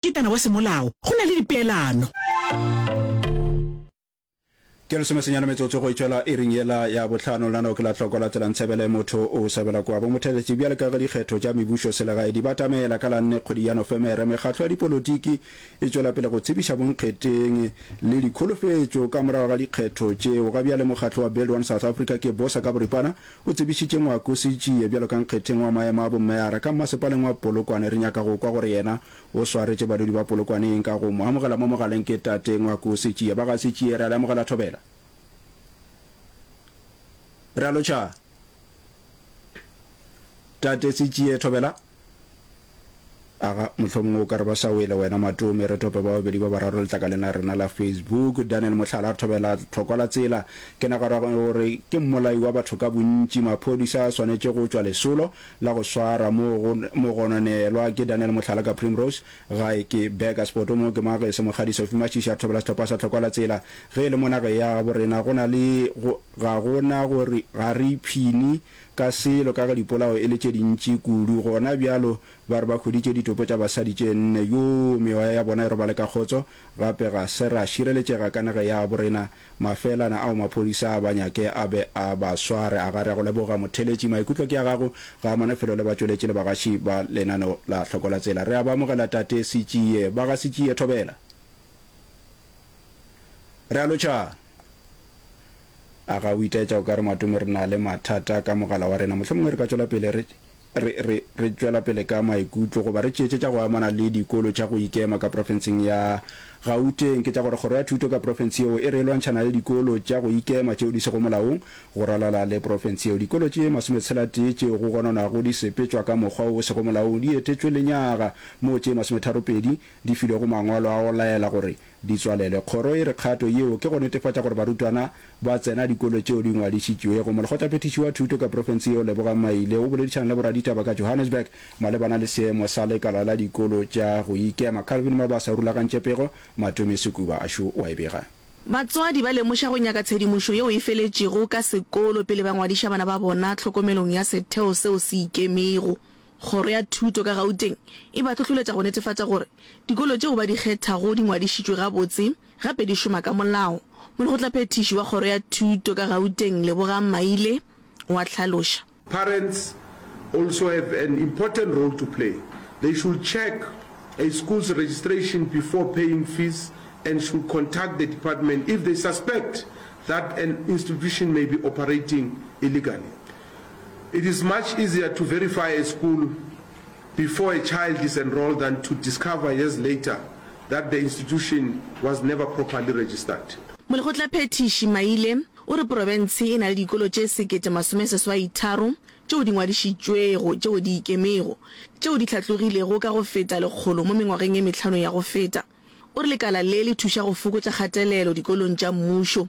Ketana wa semolao, go na le dipeelano. Ke lesome senyane metsotso go itšwela iring yela ya bohlano. Lona nao ke la hloko la tselang tshebele motho o sebela kwa bomotheletši. Bjale ka ge dikgetho tša mebušo selegae di batamela ka la nne kgwedi ya Nofemere, mekgatlo ya dipolotiki e tšwela pele go tsebiša bonkgeteng le dikholofetšo ka morago ga dikgetho tšeo. Ga bjale mokgatlo wa Build One South Africa ke bosa ka boripana O tsebišitše Ngoako Sitjie bjalo ka nkgetheng wa maemo a bommeara ka mmasepaleng wa Polokwane. Re nyaka go kwa gore yena o swaretše badudi ba Polokwane eng ka go mo amogela mo mogaleng ke Tate Ngoako Sitjie. Ba ga Sitjie re a le amogela thobela. Re a lo tšhaba. Tate Sitjie, thobela. Aga, mohlomongwe o ka re ba sa wele wena Matome. Re tope ba babedi ba bararo letlakaleng la rena la Facebook. Daniel Mohlala, re thobela tlhokwa la tsela. Ke nagara gore ke mmolai wa batho ka bontši. Maphodisa a swanetše go tšwa lesolo la go swara mo go mo gononelwa ke Daniel Mohlala ka Primrose. Gae ke Burger Spoto mo ke mage se Mokgadi Sophie Mashishi a thobela sehlopha sa tlhokwa la tsela. Ge e le mo nageng ya gabo rena go na le go ga go na gore ga re iphini ka selo ka ga dipolao e le tše dintši kudu. Gona bjalo ba re ba hweditše ditopo tša basadi tše nne. Yoo, meoya ya bona e robale ka kgotso, gape ga se ra šireletšega ka naga yabo rena. Mafelana ao maphodisa a ba nyake a be a ba sware. Agare a go leboga Motheletši. Maikutlo ke a gago. Ga a mane felo le batšweletši le bagaši ba lenaneo la Hlokola-Tsela. Re a ba amogela Tate Sitšie. Bagasitšie, thobela. Re a lo tšhaba. A ga o itaetša o ka re, Matome, re na le mathata ka mogala wa rena? Mohlomongwe re ka tšwela pele re, re, re, re tšwela pele ka maikutlo, goba re tšeetše tša go amana le dikolo tša go ikema ka profenseng ya Gauteng. Ke tša gore kgoro ya thuto ka profense yeo e re e lwantšhana le dikolo tša go ikema tšeo di sego molaong go ralala le profense yeo. Dikolo tše masometshela-tee tšeo go gononwago di sepetšwa ka mokgwa o o sego molaong di etetšwe lenyaga, moo tše masometharo-pedi di filwego mangwalo a go laela gore Di tswalelwe. Kgoro e re kgato yeo ke go netefatša gore barutwana ba tsena dikolo tšeo di ngwadišitšwego. Molekgotlaphethiši wa Thuto ka profense yeo Lebogang Maile o boledišana le boraditaba ka Johannesburg malebana le seemo sa lekala la dikolo tša go ikema. Calvin Mabasa o rulagantše pego, Matome Sukuba a šo wa e bega. Batswadi ba lemoša go nyaka tshedimošo yeo e feletšego ka sekolo pele ba ngwadiša bana ba bona tlhokomelong ya setheo seo se ikemego. Kgoro ya Thuto ka Gauteng e ba hlohloletša go netefatša gore dikolo tšeo ba di kgethago di ngwadišitšwe gabotse gape di šoma ka molao. Molekgotlaphethiši wa Kgoro ya Thuto ka Gauteng, Lebogang Maile, o a hlaloša. Parents also have an important role to play. They should check a school's registration before paying fees and should contact the department if they suspect that an institution may be operating illegally. It is much easier to verify a school before a child is enrolled than to discover years later that the institution was never properly registered. Molekgotlaphethiši Maile o re porofense e na le dikolo tše sekete masome seswai tharo tšeo di ngwadišitšwego tšeo di ikemego tšeo di hlatlogilego ka go feta lekgolo mo mengwageng e mehlano ya go feta. O re lekala le le thuša go fokotša kgatelelo dikolong tša mmušo.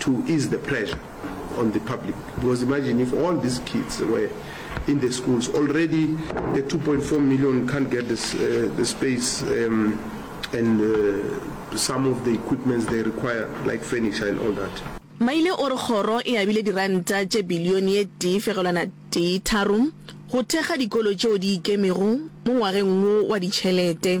to ease the pressure on the public because imagine if all these kids were in the schools already the 2.4 million can't get this, uh, the space um, and uh, some of the equipments they require like furniture and all that maile o re kgoro e abile diranta tše bilione ye tee fegelwana tee tharo go thekga dikolo tšeo di ikemego mo ngwageng wo wa ditšhelete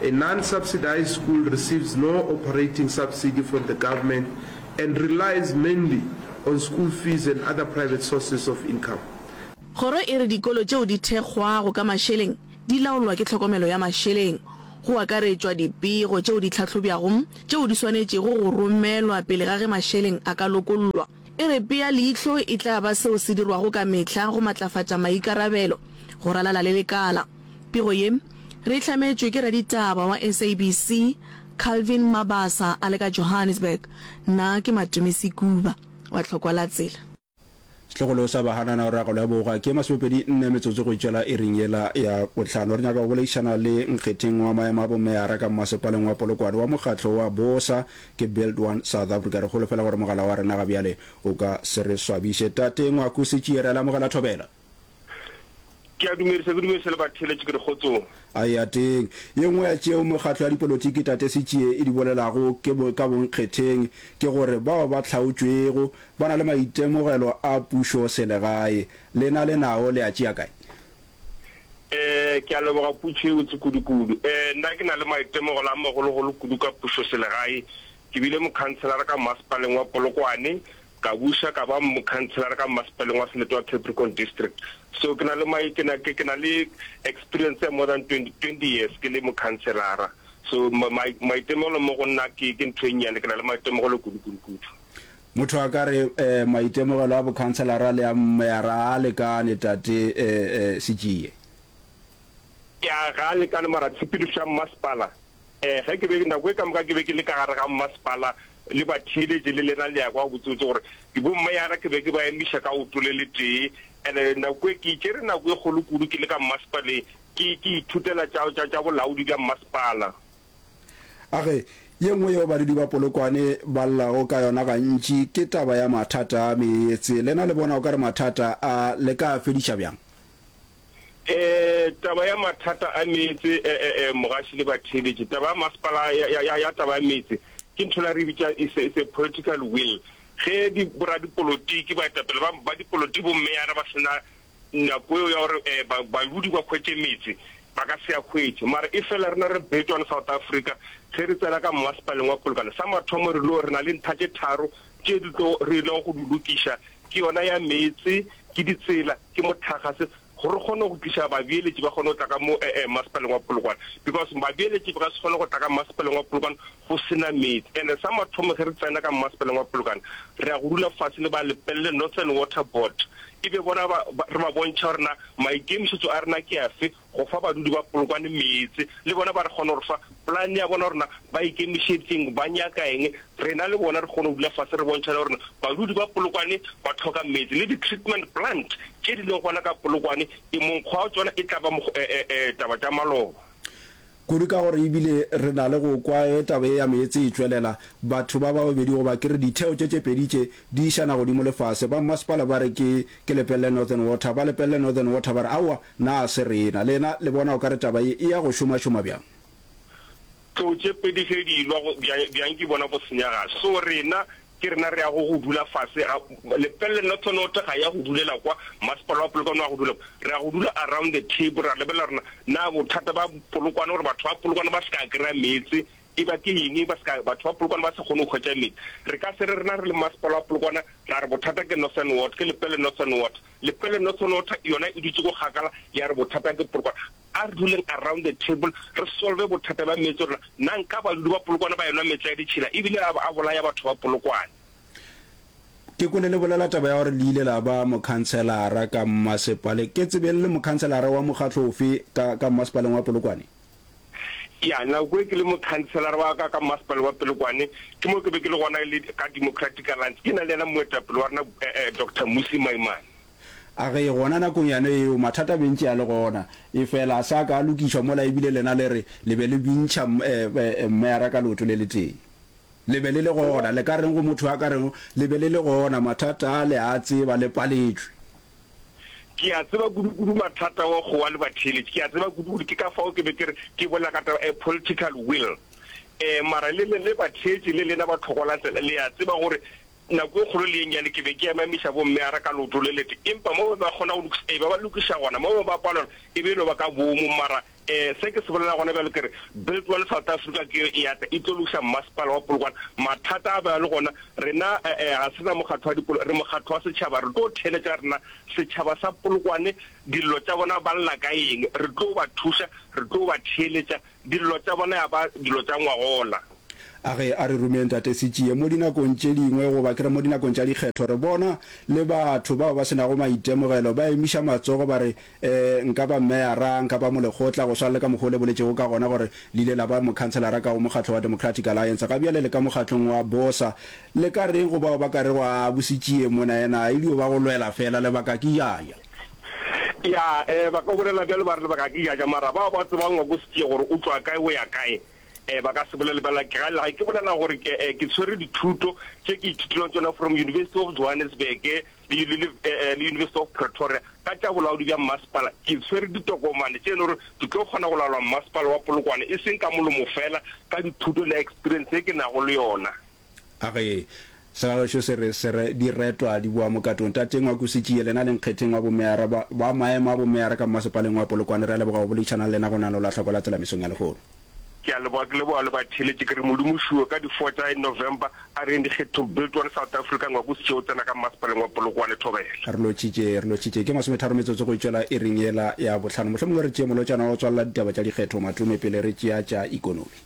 A non-subsidized school receives no operating subsidy from the government and relies mainly on school fees and other private sources of income. Kgoro e re dikolo tšeo di thekgwago ka mašeleng di laolwa ke tlhokomelo ya mašeleng, go akaretšwa dipego tšeo di hlahlobjwago tšeo di swanetšego go romelwa pele ga ge mašeleng a ka lokollwa. E re pea leihlo e tla ba seo se dirwago ka mehla go matlafatša maikarabelo go ralala le lekala. Pego ye, re e hlametšwe ke raditaba wa SABC, Calvin Mabasa a le ka Johannesburg. Nna ke Matome Sekuba wa Tlhokwa la Tsela. Sehlogolo sa bahanana o re agelo ya bogoa ke ye masomepedi nne metsotso go tšwela iring yela ya bohlano. Re nyaka go boleišana le nkgetheng wa maemo a bomeyara ka mmasepaleng wa Polokwane wa mokgatlo wa bosa ke Build One South Africa. Re holofela gore mogala wa rena gabjale o ka se re swabiše. Tate Ngwaku Setšiere, a le amogela thobela. Ke a dumedisa, ke dumedisa le batheeletši ke re kgotsong. A eateng. Ye nngwe ya tšeo mekgatlo ya dipolotiki Tate Sitjie e di bolelago ke bo, ka bonkgetheng ke gore bao ba hlaotšwego ba na le maitemogelo a pušo selegae. Lena le nao le a tšea kae? Eh, ke a leboga putšo e botse kudu-kudu. Eh, nna ke na le maitemogelo a magolo-golo kudu ka pušo selegae. Ke bile mokhanselara ka Mmasepaleng wa Polokwane, Ka buša ka ba mokhanselara ka mmasepaleng wa Selete wa Capricorn District. So ke na le my ke na ke ke na le experience ya more than 20 20 years ke le mokhanselara. So ma ma maitemogelo mo go nna ke ke ntho e nnyane ke na le maitemogelo kudu kudu kudu. Motho a ka re eh maitemogelo a bokhanselara le a mmeyara a lekane tate eh eh Sitšie. Ya ga a lekane mara tshepedišo ya mmasepala Ge ke be, nako e ka moka ke be ke le ka gare ga mmasepala le batheeletši, le lena le a kwa gabotsebotse gore ke bommeyara, ke be ke ba emiša ka oto le letee. And-e nako e, ke itšere nako e kgolo kudu ke le ka mmasepaleng, ke, ke ithutela tša, tša, tša bolaodi bja mmasepala. A re, Ye nngwe yeo badudi ba Polokwane ba llago ka yona gantši ke taba ya mathata a meetse. Lena le bona o ka re mathata a le ka a fediša bjang? E, taba ya mathata a meetse, e, e, e, mogaši le batheeletši, taba ya masepala ya, ya, ya, ya taba ya meetse ke ntho la re bitša is a, is a political will. Ge di, boradipolotiki, baetapele ba, ba dipolotiki, bommeyara ba sena nako eo ya gore e, ba, baludi ba hwetše meetse, ba ka se a hwetše. Mara efela rena re betšwana South Africa, ge re tsena ka mmasepaleng wa Polokwane, sa mathomo re lo re na le ntha tše tharo Tše di tlo re no go di lokiša ke yona ya meetse, ke ditsela, ke motlhagase gore re kgone go tliša babeeletši ba kgone go tla ka mo Masepaleng wa Polokwane because babeeletši ba ka se kgone go tla ka Masepaleng wa Polokwane go se na meetse. And-e sa mathomo ge re tsena ka Masepaleng wa Polokwane re ya go dula fase le ba Lepelle Northern Water Board e be bona ba re ba bontšha gore na maikemišetšo a rena ke afe Go fa badudi ba Polokwane meetse, le bona ba re kgona go re fa polane ya bona gore na ba ikemišeditseng, ba nyaka eng, rena le bona re kgone go dula fase re bontšhane gore na badudi ba Polokwane ba tlhoka meetse. Le di-treatment plant tše di leng gona ka Polokwane e monkgo wa tšona e tla ba taba tša maloba. Kudu ka gore e bile re na le go kwa ge taba ye ya meetse e tšwelela, batho ba ba babedi goba ke re ditheo tše tše pedi tše di išana godimo le fase. Ba mmasepala ba re ke ke lepelele Northern Water, ba lepelele Northern Water ba re aowa, Na se rena? Lena le bona o ka re taba ye e ya go šomašoma bjang? Tlou tše pedi ge di lwa, go, bja, bjang ke bona go senya ga so. Rena, ke rena re yago go dula fase ga, lepelle nothonotho ga e ya go dulela kwa, masepala wa polokwane wa go dula kwa. Re ya go dula around the table, ra lebelela gore na, na bothata ba polokwane, gore batho ba polokwane ba se ka kry-a meetse, E ba ke eng ba se ka batho ba Polokwane ba sa kgone go hwetša meetse? Re ka se re rena re le Mmasepala wa Polokwane ra re bothata ke Northern Ward, ke Lepelle Northern Ward. Lepelle Northern Ward yona e dutše ko kgakala ya re bothata ke Polokwane. A re duleng around the table re solve bothata bja meetse rena. Na nka badudi ba Polokwane ba enwa meetse ya ditšhila e bile a bolaya batho ba Polokwane? Ke kwele le bolela taba ya gore le ile la ba mokhanselara ka mmasepale. Ke tsebeng le mokhanselara wa mokgatlo ofe ka ka mmasepaleng wa Polokwane? Yana kwe ke le mokhanselara wa ka ka Mmasepala wa Pelokwane, ke mo ke be ke le gona le ka Democratic Alliance, ke na le yena moetapele wa rena eh-eh Doctor Mmusi Maimane. A re gona nakong yane yeo mathata a be ntše a le gona, efela a sa ka a lokišwa mola ebile lena le re le be le bintšha eh-eh Mmeyara ka leoto le letee. Le be le le gona, le ka reng go motho a ka rego le be le le gona, mathata ale a a tseba, le paletšwe. Ke a tseba kudu-kudu mathata wa go wa le batheeletši. Ke a tseba kudu-kudu, ke ka fao ke be ke re, ke bolela ka taba, a political will. Um, mara le, le, le batheetši, le lena ba tlhokolantle, le a tseba gore nako e kgolo le ye nnyane ke be ke emamiša bomme ara ka leoto le lete, empa mo ba kgona go lokiša, ee, ba ba lokiša gona, mo ba palelwa, e be e no ba ka boomo, mara Ee, se ke se bolela gona bjalo ke re, Build One South Africa ke yo e ata e tlo lokiša mmasepala wa Polokwane. Mathata a ba le gona, rena eh-eh, ga se na mokgatlo wa dipolo, re mokgatlo wa setšhaba. Re tlo theeletša rena setšhaba sa Polokwane, dillo tša bona ba lla ka eng, re tlo ba thuša, re tlo ba theeletša, dillo tša bona ya ba dilo tša ngwagola. A re, a re romeng Tate Sitšie mo dinakong tše dingwe, goba ke re mo dinakong tša dikgetho, re bona le batho bao ba se nago maitemogelo ba emiša matsogo ba re, Ee, nka ba meyara, nka ba molekgotla, go swana le ka mokgwa o le boletšego ka gona gore le ile la ba mokhanselara ka go mokgatlo wa Democratic Alliance. Ga bjale le ka mokgatlong wa Bosa. Le ka reng go bao ba ka rego, Aa, Bositšie mona yena a il'o ba go lwela feela, lebaka ke jaja. Ya, ee, ba ka bolela bjalo ba re, lebaka ke jaja. Mara bao ba tsebang ngwako Sitšie gore o tšwa kae o ya kae, ee, ba ka se bolele bjalo. Ke ga, ga ke bolela gore ke, ee, ke tshwere dithuto tše ke ithutilego tšona from University of Johannesburg, le University of Pretoria ka tša bolaodi bja mmasepala, ke swere ditokomane tše e le gore ke tlo kgona go laola mmasepala wa Polokwane e seng ka molomo fela, ka dithuto le experience ye ke nago le yona. A re, Segagešo se re, se re, Diretwa di boa mokatong. Tate Ngwakusitši, yelena a le nkgetheng wa bomeyara, ba, ba maemo a bomeyara ka mmasepaleng wa Polokwane, re a leboga go boledišana le lena go nano la hlako la Tselamisong ya Lehono. Ke a leboga, ke leboga le batheeletši, ke re Modimo o šuwe ka di four tša in November, a re yeng dikgethong, Build One South Africa, ngwako o se tšee o tsena ka mmasepaleng wa Polokwane, thobela. Re lotšitše, re lotšitše, ke masometharo metsotso go e tšwela iring yela ya bohlano, mohlomongwe re tšee molotšana wa go tswalela ditaba tša dikgetho, Matume, pele re tšea tša ikonomi.